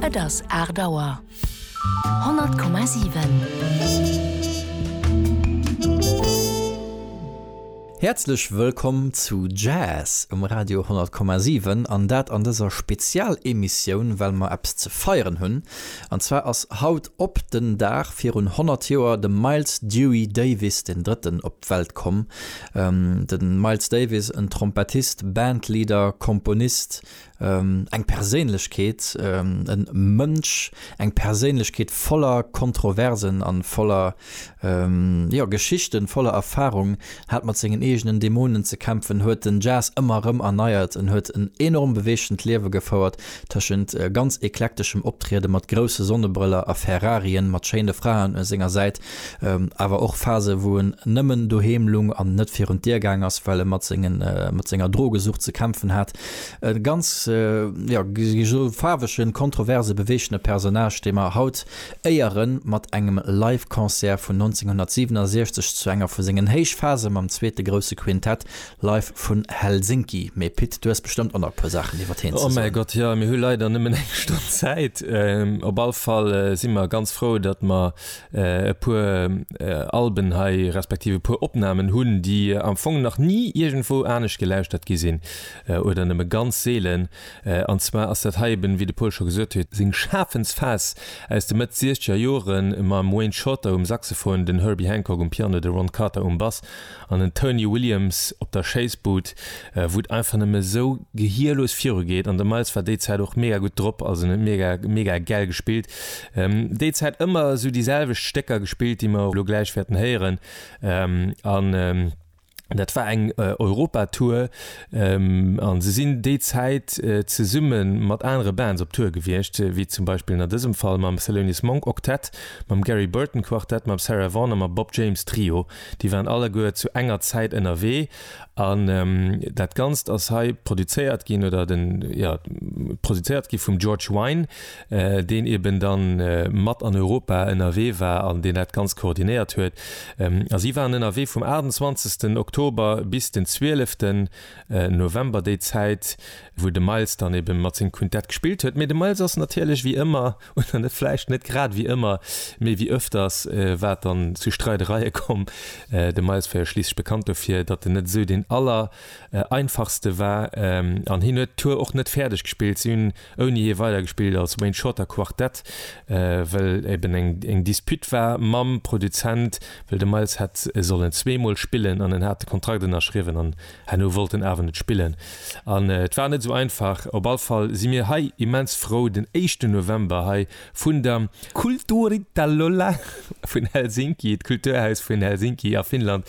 Et ass aacht Auer. 100,7. Häerzlech wëllkomm zu Jazz um Radio 100,7 an dat an dëser Spezialemissioun, well mer eppes ze feieren hunn. An zwar ass haut op den Dag virun 100 Joer de Miles Dewey Davis den Drëtten op d'Welt komm. De Miles Davis, en Trompettist, Bandleader, Komponist, eng Perséinlechkeet, e Mënsch, eng Perséinlechkeet voller Kontroversen a voller, jo, Geschichten, voller Erfarung, hat mat sengen eegenen Dämonen ze kämpfen, huet den Jazz ëmmer erëm erneiert, en huet en enorm beweegtent Liewe gefouert, tëschent ganz eklekteschem Optriede mat grousse Sonnebrëller a Ferrarien mat schéine Fraen u senger Säit Awer och Phase wou en nëmmen doheem lung an net virun d'Dier gaang ass, well e mat senger Drogesucht ze kämpfen hat. E ganz faarwegen, kontroverse, beweegene Personnage, dee mer haut éieren mat engem Live Concert vun 1967 zu enger vu sengen Héichphase mam zweete grousse Quintett live vun Helsinki. Mee Pit, du hues bestëmmt och nach e puer Saachen iwwert hien ze soen. Oh mäi Gott, jo, mir hu leider nëmmen eng Stonn Zäit. Op all Fall si mer ganz frou, datt mer e puer Alben hei, respektiv e puer Opnamen hunn, déi am Fong nach ni iergendwou anescht gelauschtert gi sinn oder nëmme ganz seelen. An zwar ass dat hei eben, wéi de Paul scho gesot huet, seng Schafensphas aus de Mëtt Siechzeger Joren, mam Wayne Shorter um Saxophon, den Herbie Hancock um Piano, de Ron Carter um Bass An den Tony Williams op der Schéissbud, wou et einfach nëmme esou gehierlos viru geet. An de Miles war déi Zäit och mega gutt drop, also en huet mega, mega gäll gespillt. Déi Zäit ëmmer esou déi selwecht Stécker gespillt, déi mer elo gläich wäerten héieren. An dat war eng Europa-Tour. A se sinn déi Zäit zesumme mat anere Bands op Tour gewiescht, wéi zum Beispill a dësem Fall mam Thelonious Monk Octet, mam Gary Burton Quartet, mam Sarah Vaughan a mam Bob James Trio. Déi waren alleguer zu enger Zäit ënnerwee an dat Ganzt ass hei produzéiert ginn oder den, jo, produzéiert gi vum George Wein, deen eben da mat an Europa ënnerwee war an deen dat Ganzt koordinéiert huet. A si waren ënnerwee vum 28 Oktober bis den 12 November, déi Zäit, wou de Miles dann eben mat sengem Quintett gespillt huet. Mee de Miles ass natierlech wéi ëmmer oder net vläicht net grad wéi ëmmer, mee wéi ëfters, war et dann zu Streidereie komm. De Miles war jo schliisslech bekannt dofir, datt en net esou deen aller einfachste war an hien huet d'Tour och net fäerdeg gespillt. Si hunn ouni hie weidergespillt als Wayne Shorter Quartett, well eben eng Dispute war mam Produzent, well de Miles hätt sollen zweemol spillen an en hat de Kontrakt ënnerschriwwen an Herno wollt en awer net spillen an et war net sou einfach. Op all Fall si mir hei immens frou den éischten November hei vun der Kulturitalolla vun Helsinki, d'Kulturhaus vun Helsinki a Finnland,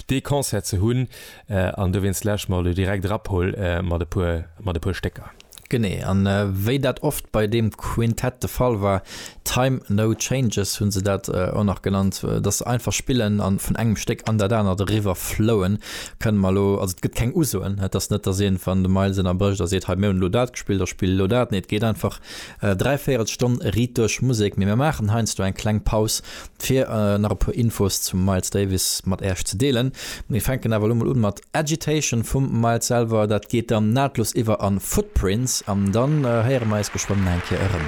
dee Concert ze hunn an dowéinst lauschteren mer elo direkt erap, hol mat e puer Stécker. Genee, an wéi dat oft bei deem Quintett de Fall war, Time No Changes hunn se dat och nach genannt, dass se einfach spillen a vun engem Stéck an dat anert eriwwer flouen, kënne mer elo, also et gëtt keng Usoen, et ass net, dass een, wann de Miles ënnerbrécht a seet, hei mir hunn elo dat gespillt, da spill elo dat, nee et geet einfach dräi Véierelstonn riit duerch Musek. Mee mir maachen heiansdo eng kleng Paus fir nach e puer Infos zum Miles Davis mat Äerch ze deelen. Mir fänken awer elo mol un mat Agitation vum Miles selwer, dat geet dann nahtlos iwwer an Footprints an dann héiere mer eis geschwënn nach eng Kéier erëm.